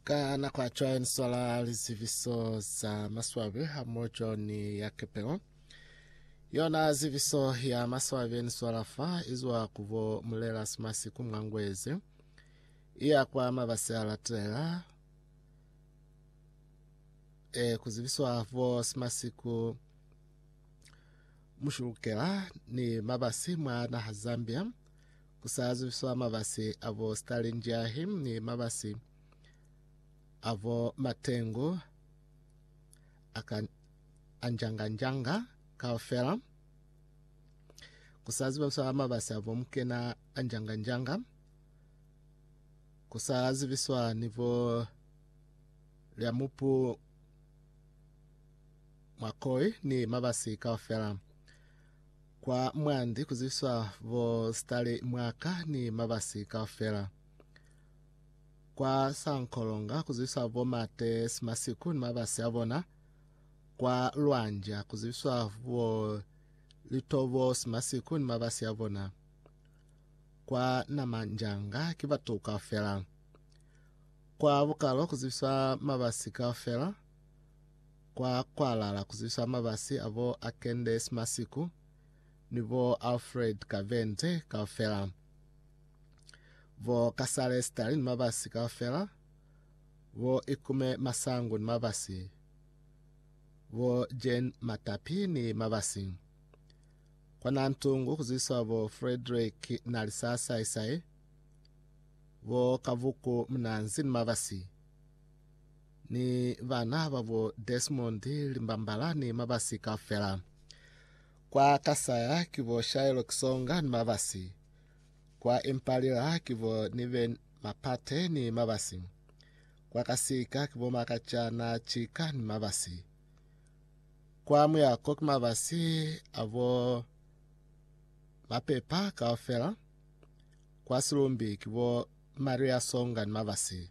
Ka nako ya cwae ni swala liziviso za maswabi hamojo ni ya kepelo. Yona ziviso ya maswabi ni swala fa izwa kubo mulela simasi ku mwangwezi. Iya kwa mabasi a latela. E kuziviswa bo simasiku mushulukela ni mabasi mwa naha Zambia. Ku sa zwiswa mabasi a bo Stalinjahi ni mabasi a bo Matengu a ka a njanga-njanga kaufela. Ku sa zibiswa mabasi a bo Mukena a njanga-njanga. Ku sa zibiswa ni bo Lyamupu Mwakoi ni mabasi kaufela. Kwa mwandi ku zwiswa bo sitale mwa ka ni mabasi kaufela. Kwa sankolonga ku zwiswa bo mate simasiku ni mabasi a bona. Kwa lwanja ku zwiswa bo litobo simasiku ni mabasi a bona. Kwa namanjanga ki batu kaufela. Kwa bukalo ku zwiswa mabasi kaufela. kwa kwalala kuzibisa mabasi abo a Candace Masiku ni bo Alfred Kavente kaufela, bo Kasale Stali ni mabasi kaufela, bo Ikume Masangu ni mabasi, bo Jane Matapi ni mabasi. Kwa Nantungu kuzibiswa bo Frederick Nalisa Saisai, bo Kavuku Munanzi ni mabasi. Ni bana ba bo Desmond, Limbambala ni mabasi kaufela. Kwa Kasaya ki bo Shaelo Kisonga ni mabasi. Kwa Impalila ki bo Niven Mapate ni mabasi. Kwa Kasika ki bo Makachana Chika ni mabasi. Kwa Muyako ki mabasi a bo Mapepa kaufela. Kwa Silumbi ki bo Maria Songa ni mabasi.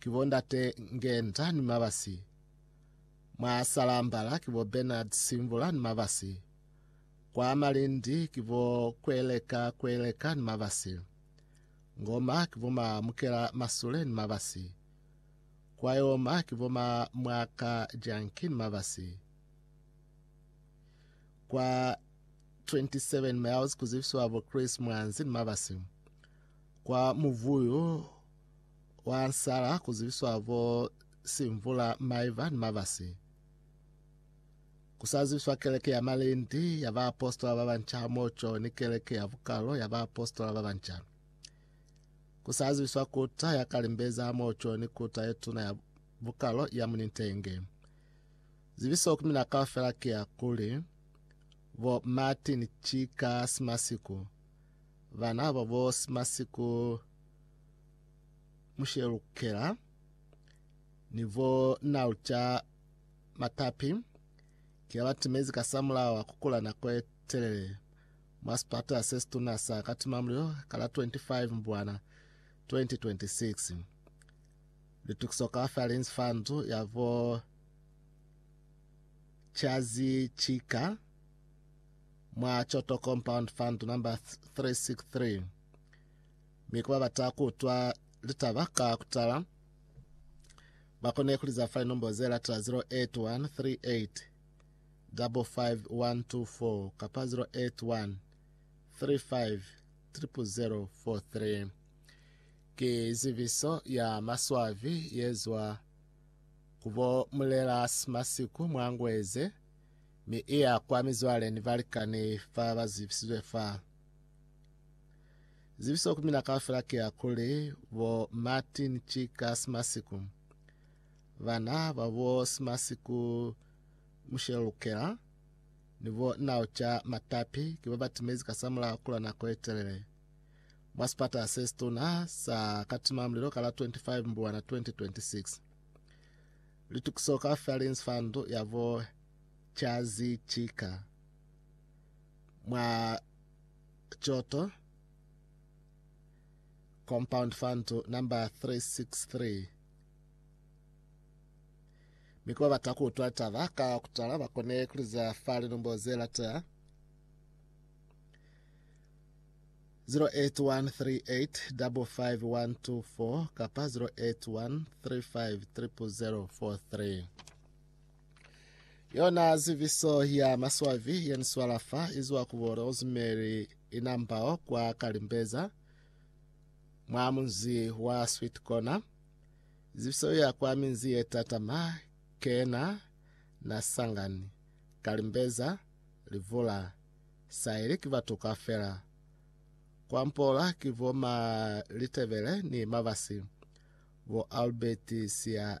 Ki bo Ndate Ngenda ni Mabasi, mwa Salambala ki bo Bernard Simbula ni Mabasi, kwa Malindi ki bo Kweleka Kweleka ni Mabasi, Ngoma ki bo ma Mukela Masule ni Mabasi, Kwayoma ki bo ma Mwaka Janki ni Mabasi, kwa 27 Miles ku zibisiwa bo Chris Mwanzi ni Mabasi, kwa Muvuyu wa sala ku zibiswa bo simvula, maiva ni mabasi. Ku sa zibiswa keleke ya malindi ya baapositola ba banca hamoco ni keleke ya bukalo ya baapositola ba banca. Ku sa zibiswa kuta ya kalimbeza hamoco ni kuta ye tuna ya bukalo ya munintenge. Zibiso ku mina kaufela ki ya kuli, bo Martin Chika Simasiku, bana ba bo Simasiku mushelukela ni vo nalca matapi ki abatimezi kasamulaho a kukula nako ye telele mwa sipatala sesituna sa Katimamulilo ka la 25 Mbwana 2026. Litukiso kaufela li nzi fa ndu ya vo Chazi Chika mwa Choto Compound Fund number 363. Mi ku ba bata ku utwa litaba ka ku tala, ba kone ku li za fa linombo ze latela 081 38 55124 kapa 081 35 0043. Ki zibiso ya maswabi ye zwa ku bo Mulela Simasiku mwa Ngweze, mi i ya kwa mizwale ni balikani ba ba zibisizwe fa. Zibiso ku mina kaufela ki ya kuli bo Martin ki ka Simasiku, bana ba bo Simasiku Mushelo Lukela ni bo Naucha Matapi ki ba ba timezi ka sa mulaho kulwa nako ye telele mwa sipata se situna sa Katimamulilo ka la 25 Mbulwana 2026. Litukiso kaufela li nzi fa ndu ya bo Chazi Chika. mwa Kyoto compound fund number 363 mikuba bata kuutwa taba ka kutala bakone kuliza fa linumbo ze latea 0813855124 kapa 0813500043 Yona ziviso ya maswavi yeniswala fa izwa ku bo Rosemary Inambao kwa Kalimbeza mwa munzi wa Sweet Corner. Ziviso ya kwa minzi ye tatama kena na Sangani, Kalimbeza, Livula, Saili ki batu ka fela. Kwa Mpola ki bo ma Litebele ni Mabasi, bo Albert Sia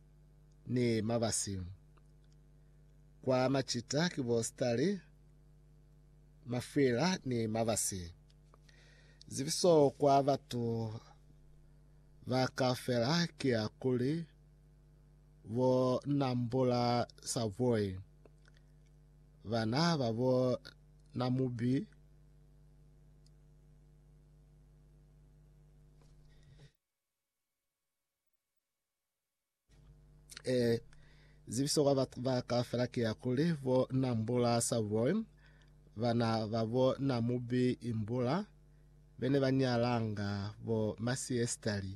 ni mabasi. Kwa macita ki bo sitali, mafwila ni mabasi. Zibiso kwa batu ba kaufela ki ya kuli bo Nambula Savoy, bana ba bo Namubi, Eh, zibiso kwa bat- ba kaufela ke ya kuli bo na mbula sa boy bana ba bo na mubi imbula bene ba nyalanga bo masiestali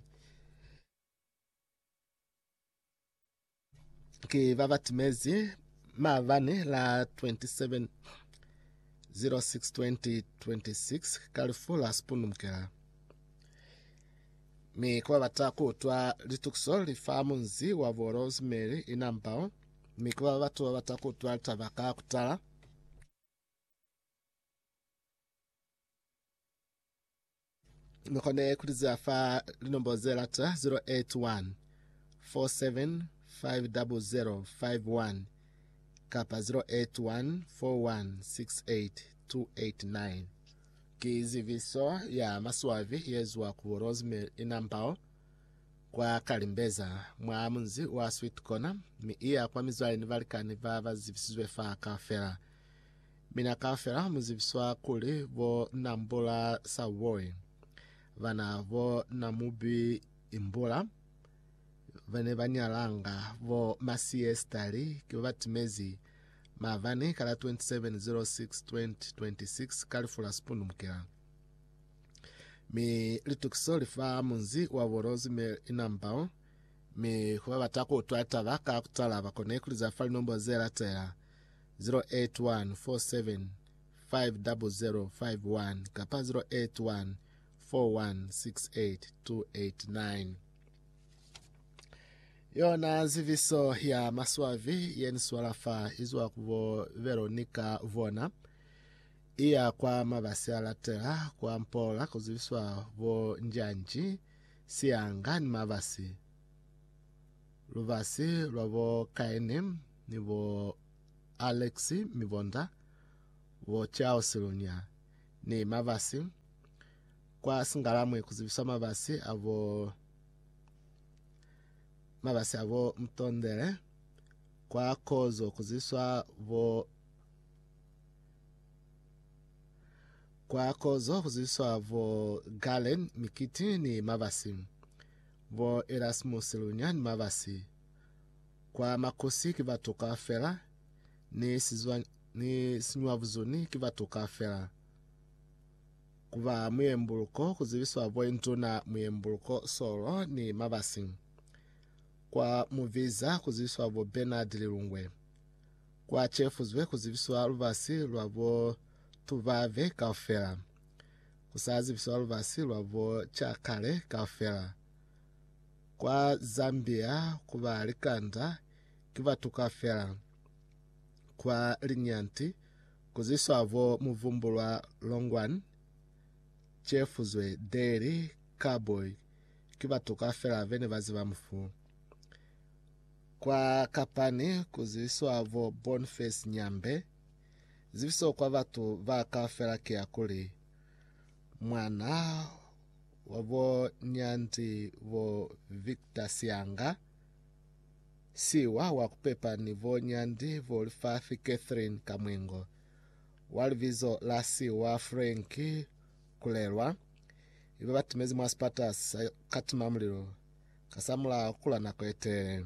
Ki ba ba timezi maabani la 27 06 2026 ka lifu la Spoon Mkela. Mi ku babata ku utwa litukiso li fa munzi wa bo Rosemary Inambao, mi ku ba batu ba bata ku utwa litaba ka kutala. Ni kone kutizela fa linombolo ze lata 081 4750051 kapa 081 4168289. Ki zibiso ya maswabi ye zwa ku Rosemary Inambao kwa Kalimbeza mwa munzi wa Sweet Corner mi iya kwa mizwale ni balikani ba ba zibisizwe fa kaufela. Mina kaufela mu zibiswa kuli bo Nambula Sawboy, bana bo Namubi Imbula, ba ne ba nyalanga bo Masie Stali ki ba ba timezi maabani ka la 27 06 2026 ka lifu la sipundumukela. Mi litukiso li fa munzi wa bo Rose Mary Inambao, mi ku ba bata ku utwa taba ka kutala ba kone ku liza fa linombo ze latela. 081 4750051 kapa 081 4168289. Yona ziviso ya maswavi yeniswala fa izwa ku bo Veronica Vona iya kwa mabasi alatela kwa Mpola kuziviswa bo Njanji, Sianga ni mabasi. Lubasi lwa bo Kaini ni bo Aleksi mi bonda, bo Charles Lunya ni Mabasi, kwa Singalamwi ku zibiswa Mabasi a bo Mabasi a bo Mtondele, kwa Kozo ku zibiswa bo kwa Kozo ku zibiswa bo Galen Mikiti ni Mabasi. Bo Erasmus lunya ni mabasi kwa makosi ki batoka fela, ni sizwa ni siñwabuzuni ki batoka fela. Ku ba muyembuluko, ku zibiswa bo Induna Muyembuluko Solo ni mabasi. Kwa mubiza ku zibiswa bo Bernard Lilungwe. Kwa cefuzwe ku zibiswa lubasi lwa bo Tubave kaufela. Ku sa zibiswa lubasi lwa bo ca kale kaufela. Kwa Zambia ku ba likanda ki batu kaufela. Kwa Linyanti ku ziswa bo muvumbulwa Longwan, Chefuzwe, Daly, Carboy ki batu kaufela be ne ba ziba mufu. Kwa Kapani ku ziswa bo Boniface Nyambe, Zibiso kwa batu ba kaufela ki ya kuli, Mwana wa bo Nyanzi bo Victor Sianga, siwa wa kupepa ni bo Nyanzi bo Lifafi Catherine Kamwengo, wa libizo la siwa Frank Kulelwa, iba batimezi mwa sipata sa katimamulilo kasamulaho kula nako yetelele.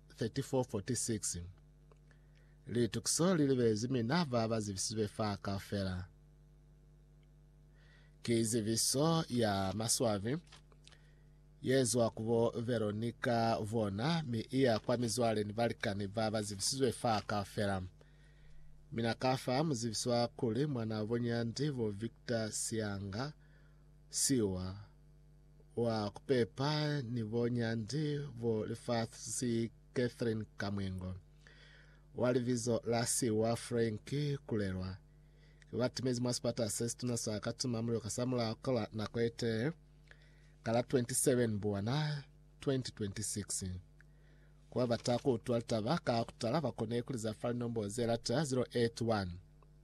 34:46, Litukiso li libezi mina ba ba zibisizwe fa kaufela. Ki zibiso ya maswabi ye zwa ku bo Veronica bona mi i ya kwa mizwale ni balikani ba ba zibisizwe fa kaufela. Mina ka fa muzibiswa kuli mwanabo nyandi bo Victor Sianga, Siwa, wa kupepa ni bo nyandi bo lifasi Catherine Kamwengo, wa libizo la siwa Frank Kulelwa, ki batimezi mwa sipata se situna sa Katuma Mulilo ka samulaho ka la nako etee ka la 27 Buwana 2026. Kuba bata kuutwa litaba ka kutala, bakone kuliza fa linombo zelata 081